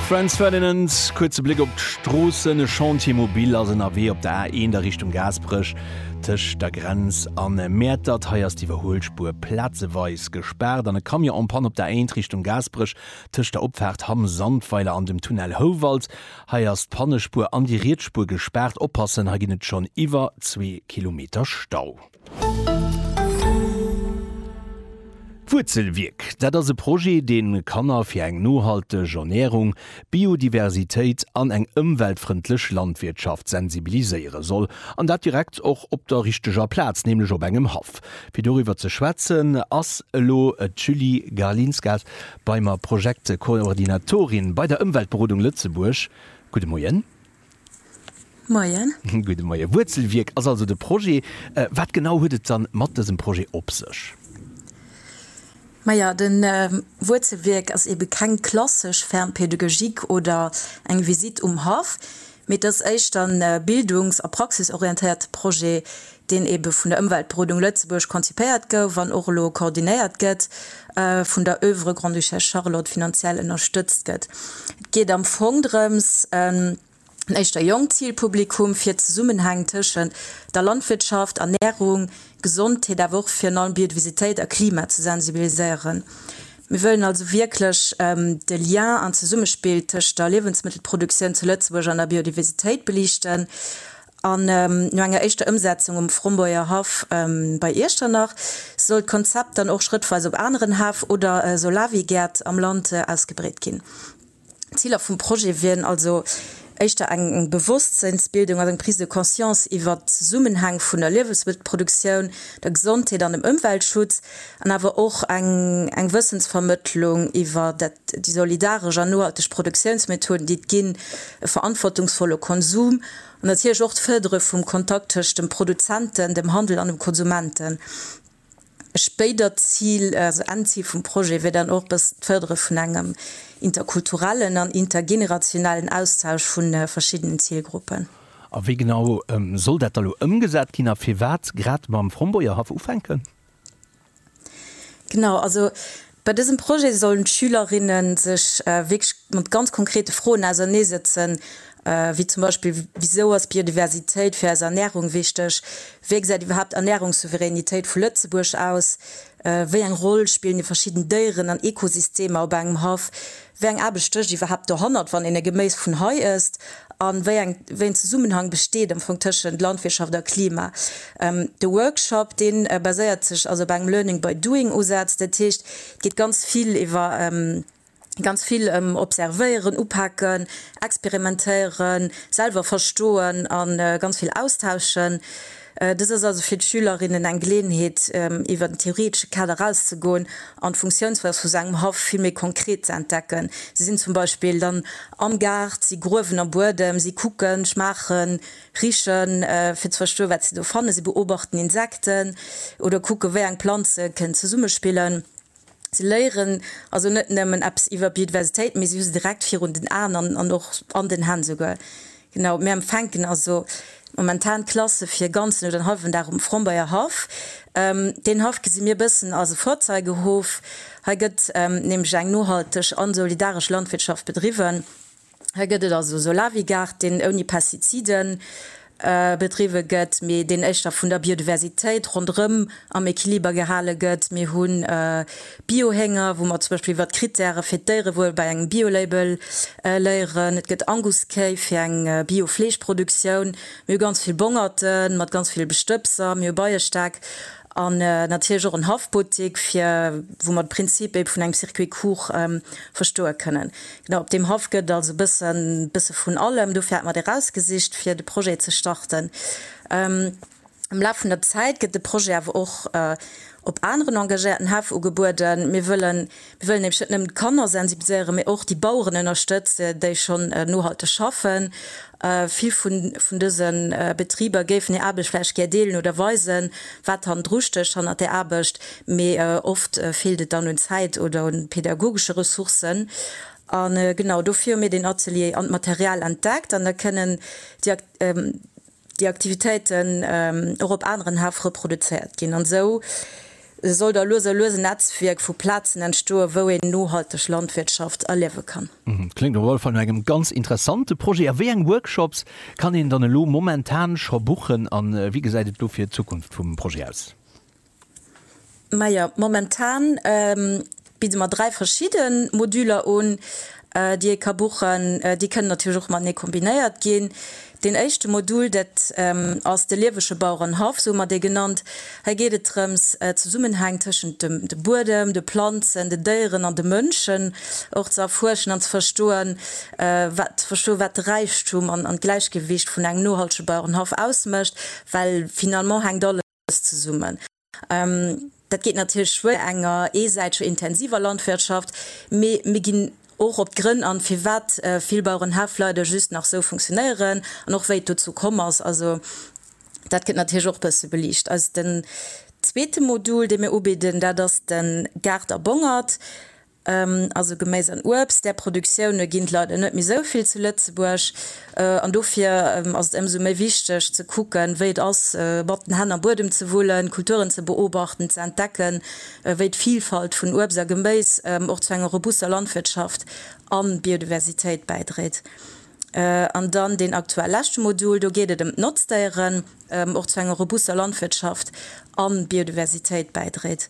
Franz Ferdinand, kuerze Bléck op d'Stroossen. E Chantier mobil ass ënnerwee op der A1 a Richtung Gaasperech, tëscht der Grenz a Mäertert. Hei ass d'Iwwerhuelspuer plazeweis gespaart an e Camion en panne op der A1 Richtung Gaasperech, tëscht der Opfaart Hamm Sandweiler an dem Tunnel Houwald. Hei ass d'Pannespuer an déi riets Spuer gespaart. Oppassen, hei ginn et schonn iwwer zwee Kilometer Stau. Wuerzelwierk, dat ass e Projet, dee Kanner fir eng nohalteg Ernärung, Biodiversitéit an eng ëmweltfrëndlech Landwirtschaft sensibiliséiere soll, an dat direkt och op der richteger Plaz, nämlech op engem Haff. Fir doriwwer ze schwätzen, ass elo d'Julie Garlinskas bei mer, Projektkoordinatorin bei der Ëmweltberodung Lëtzebuerg. Gudde Moien. Moien. Gudde Moien. Wuerzelwierk ass also de Projet. Wat genau huet et dann mat dësem Projet op sech? Maja, de Wuerzelwierk ass eebe keng klassesch Ferme pédagogique oder eng Visitt um Haff, mee et ass éischter e bildungs a praxisorientéierte Projet, deen ebe vun der Ëmweltberodung Lëtzebuerg konzipéiert gouf an och elo koordinéiert gëtt, vun der Oeuvre Grande-Duchesse Charlotte finanziell ënnerstëtzt gëtt. Et geet am Fong drëms, en éischter jonkt Zilpublikum fir d'Zesummenhäng tëschent der Landwirtschaft, Ernärung, Gesondheet, awer och virun allem Biodiversitéit a Klima ze sensibiliséieren. Mir wëllen also wierklech de Lien an d'Zesummespill tëscht der Liewensmëttelproduktioun zu Lëtzebuerg an der Biodiversitéit beliichten. An no enger éischter Ëmsetzung um Frombeurger Haff bei Iechternach soll d'Konzept dann och schrëttweis op aneren Häff oder Solawi-Gäert am Land ausgebreet ginn. Ziler vum Projet wieren also éischter eng Bewosstséinsbildung an eng Prise de conscience iwwert d'Zesummenhäng vun der Liewesmëttelproduktioun, der Gesondheet an dem Ëmweltschutz an awer och eng Wëssensvermëttlung iwwer déi solidaresch an nohalteg Produktiounsmethoden, déi et ginn, e verantwortungsvolle Konsum, An natierlech och d'Fërdere vum Kontakt tëscht dem Produzenten, dem Handel an dem Konsumenten. E spéidert Zil, also Ennzil vum Projet wier dann och e bëssen d'Fërdere vun engem interkulturellen an intergenerationellen Austausch vu verschiddenen Zilgruppen. A wéi genau soll dat da lo ëmgesat ginn a firwat grad mam Frombeurhaff ufänken? Genau, also bei dësem Projet sollen d'Schülerinne sech wierklech mat ganz konkrete Froen auserneesetzen, wéi zum Beispill, Wisou ass Biodiversitéit fir eis Ernärung wichteg? Wéi gesäit iwwerhaapt d'Ernärungssouveränitéit vu Lëtzebuerg aus? Wéi eng Roll spillen déi verschidden Déieren an Ekosystemer op engem Haff? Wéi eng Aarbecht stécht iwwerhaapt dohannert, wann een e Geméis vun hei ësst? A wéi en Zesummenhang besteet am Fong tëschent Landwirtschaft a Klima? De Workshop, dee baséiert sech also op engem Learning by doing Usaz. Dat heescht, et geet ganz vill iwwer ganz vill ëm Observéieren, Upaken, Experimentéieren, selwer verstoen a ganz vill austauschen. Dëst ass also fir d'Schülerinnen eng Geleeënheet, iwwer den theoretesche Kader erauszegoen an d'Funktiounsweis vu sou engem Haff vill méi konkret ze entdecken. Si sinn zum Beispill dann am Gaart, si gruewen am Buedem, si kucken, schmaachen, richen, fir ze verstoen, wat se do fannen, si beobachten Insekten oder kucken, wéi eng Planze kënnen zesummespillen. Si léieren also net nëmmen eppes iwwer Biodiversitéit, mee si hu se direkt virun den Aen an och an den Hänn esouguer. Genau, mir empfänken also momentan Klasse fir e ganzen oder en hallwen Dag um Frombeyer Haff. Deen Haff gesi mir e bëssen als e Vorzeigehof. Hei gëtt nämlech eng nohalteg an solidaresch Landwirtschaft bedriwwen. Hei gëtt et also Solarwigaart, deen ouni Pestizide bedriwwe gëtt, mee deen éischter vun der Biodiversitéit ronderëm am Equiliber gehale gëtt. Mir hu Biohénger, wou mer zum Beispill iwwert d'Krittäre fir d'Déierewuel bei engem Biolabel léieren. Et gëtt Anguskéi fir eng Biofleeschproduktioun. Mir hu ganz vill Bongerte mat ganz ville Bestëbser. Mir hu Beiestäck an natierlech och en Haffbuttik, fir, wou mer de Prinzip ee vun engem Circuit court verstoe kënnen. No, op deem Haff gëtt et also bëssen bësse vun allem. Dofir hat mer dee rausgesicht, fir de Projet ze starten. Am Laf vun der Zäit gëtt de Projet awer och op aneren engagéierten Häff ugebueden. Mir wëllen, mir wëllen nämlech net nëmmen d'Kanner sensibiliséieren, mee och déi Baueren ënnerstëtze, déi schonn nohalteg schaffen Vill vun dëse Betriber géifen hir Aarbecht vläicht gär deelen oder weisen, wat hannendru stécht, hannert der Aarbecht, mee oft feelt et dann un Zäit oder un pädagogesche Ressourcen. A genau dofir hu mir deen Atelier an d'Material entdeckt an da kënnen déi Aktivitéiten och op aneren Haff reproduzéiert ginn. An esou Esou soll da lues a lues en Netzwierk vu Plazen entstoen, wou een nohalteg Landwirtschaft erliewe kann. Kléngt op alle Fall no engem ganz interessante Projet. A wéi eng Workshops kann een dann elo momentan scho buchen a wéi gesäit et dofir d'Zukunft vum Projet aus? Majo, momentan. Bidde mer 3 verschidde Moduler un, déi ee ka buchen. Déi kënnen natierlech och matenee kombinéiert ginn. Deen éischte Modul, dat ass de liewege Bauerenhaff, esou hu mer dee genannt. Hei geet et drëms, d'Zesummenhäng tëschent dem Buedem, de Planzen, den Déieren an de Mënschen och ze erfuerschen an ze verstoen, wat ze verstoen, wat de Räichtum an d'Gläichgewicht vun engem nohaltege Bauerenhaff ausmécht, well finalement hänkt alles. alles zesummen. Dat geet natierlech schwéier mat enger eesäiteger intensiver Landwirtschaft, mee mir ginn och op d'Grënn an, firwat vill Bauerenhäff leider just nach esou funktionéieren an och wéi et dozou komm ass. Also dat gëtt natierlech och e bësse beliicht. Den zweete Modul, dee mir ubidden, dat ass de Gaart a Bongert. Also Geméis an Uebst, där Produktioune ginn et leider net méi esou vill zu Lëtzebuerg. An dofir ass et ëmsou méi wichteg ze kucken, wéi et ass, mat den Hänn am Buedem ze wullen, Kulturen ze beobachten, ze entdecken, wéi d'Vilfalt vun Uebst a Geméis och zu enger robuster Landwirtschaft a Biodiversitéit bäidréit. An dann deen aktuell leschte Modul, do geet et ëm d'Notzdéieren, och zu enger robuster Landwirtschaft a Biodiversitéit bäidréit.